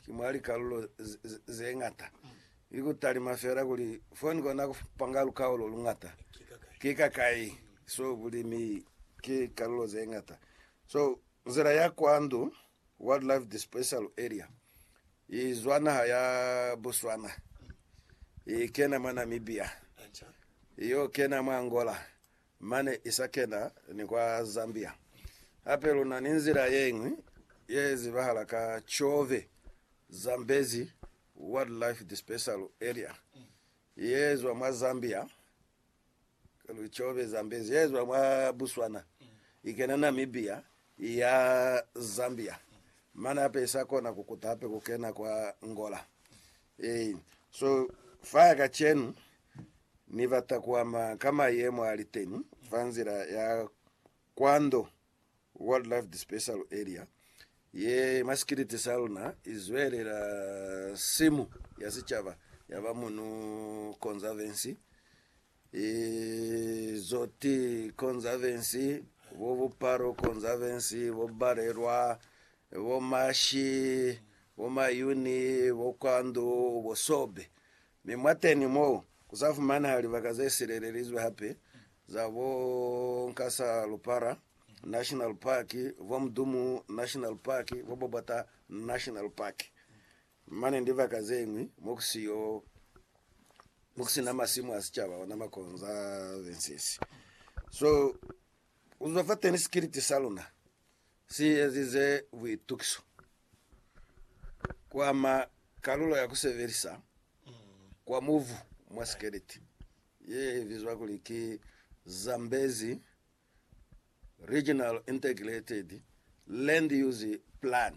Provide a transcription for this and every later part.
Ki mwa likalulo ze ñata, ki ku talima fela kuli fo ni kona ku panga lukaulo lu ñata. Ki kakai? So, bulimi ki likalulo ze ñata. So, nzila ya kwa ndu, Wildlife Dispersal Area, i zwa naha ya Botswana, i kena mwa Namibia, i yo kena mwa Angola, Mane isa kena ni kwa Zambia. Hape lu na ni nzila ye ñwi ye zibahala ka Chove, Zambezi Wildlife Dispersal Area, ye zwa mwa Zambia, Chove, Zambezi, ye zwa mwa Botswana, i kena Namibia, i ya Zambia. Mane hape isa kona ku kuta hape ku kena kwa Angola. Ee, so faya kacenu Ni bata kuama ka mayemo aliteni fa nzila ya kwando Wildlife Dispersal Area ye mwa sikiliti sa luna izwelela simu ya sicaba yaba Munu Conservancy Izo ki, Conservancy, bo Bupalu Conservancy, bo Balelwa, bo Mashi, bo Mayuni, bo Kwandu, bo Sobe. Mi mwateni mo, ku sa fumaneha libaka ze silelelizwe hape za bo Nkasa Lupara National Park, bo Mdumu National Park, bo Bobota National Park. Mane ndibaka zeñwi mokusina masimu a sicaba ona makonza bensisi so kuzwa fateni sikiliti saluna si ezize buitukiso kwama kalulo ya kusebelisa kwa mubu mwa sikiliti ye bizwa kuli ki Zambezi Regional Integrated Land Use Plan.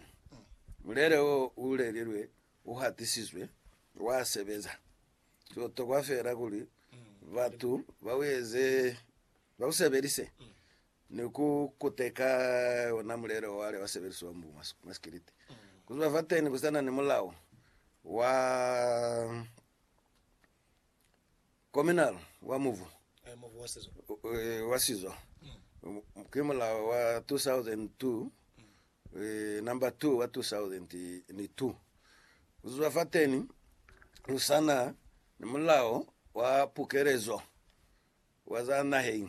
Mulele wo u lelilwe u hatisizwe, wa sebeza. Ku tokwa feela kuli batu ba u eze, ba u sebelise ni ku kuteka ona mulele o wale wa sebelisiwa mu masikiliti. Ku zwa fateni ku sa na ni mulao wa Kominal wa mubu wa sizo ki mulao wa 2002 number 2 wa 2002. Kuzwa fateni kusana ni mulao wa pukelezo wa za naheng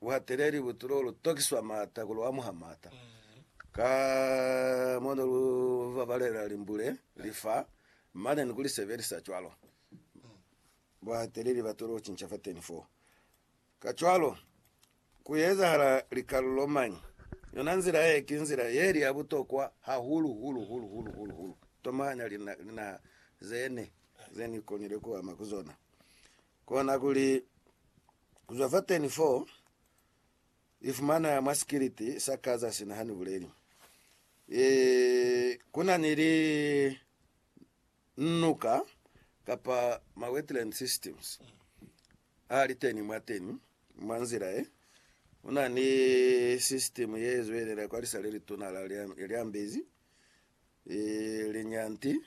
buhateleli butu lo lu tokiswa maata ku lu amuha maata ka mo ne lu babalela limbule li fa, mane ni ku li sebelisa cwalo. Buhateleli batu lo cinca fateni foo. Kacwalo, ku ezahala likalulo mañi? Yona nzila ye ki nzila ye li ya butokwa hahulu hulu hulu hulu hulu hulu tomanya linaha zene ze ni konile ku ama ku zona. Kona kuli Ku zwa fa 10 fo i fumana mwa sikiliti sa Gaza sina ha ni buleli. E, ku na ni li nuka kapa ma wetland systems a li teni mwa teni mwa nzila e. Ku na ni system ye zwelela kwa lisa le lituna la Lyambezi, e, Linyanti,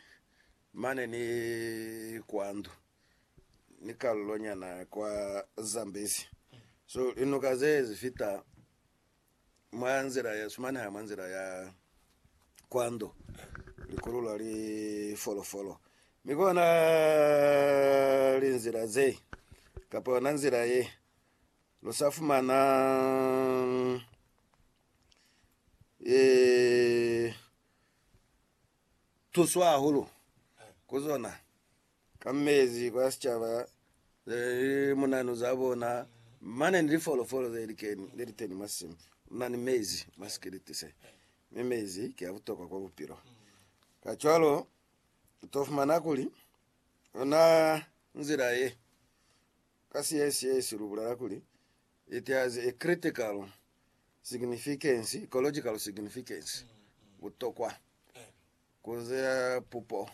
mane ni kwa ndu. ni kalulo nyana kwa Zambezi. So linuka ze zi fita mwa nzila ya sumaneha mwa nzila ya kwando likululwa li folofolo mi kona linzila ze kapa yona nzila ye lu sa fumana ee tuswa hahulu ku zona. ka mezi kwa sicaba ze li munanu za bona, mane ni lifolofolo ze likeni, le liteni mwa simu, muna ni mezi mwa sikiliti se. Mi mezi ki a butokwa kwa bupilo. Kacwalo, u to fumana kuli, ona nzila ye, ka Siesiesi lu bulela kuli, it has a critical significance, ecological significance, butokwa. Ku ze pupo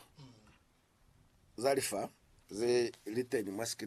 za lifa ze li teñi mwa sikilini.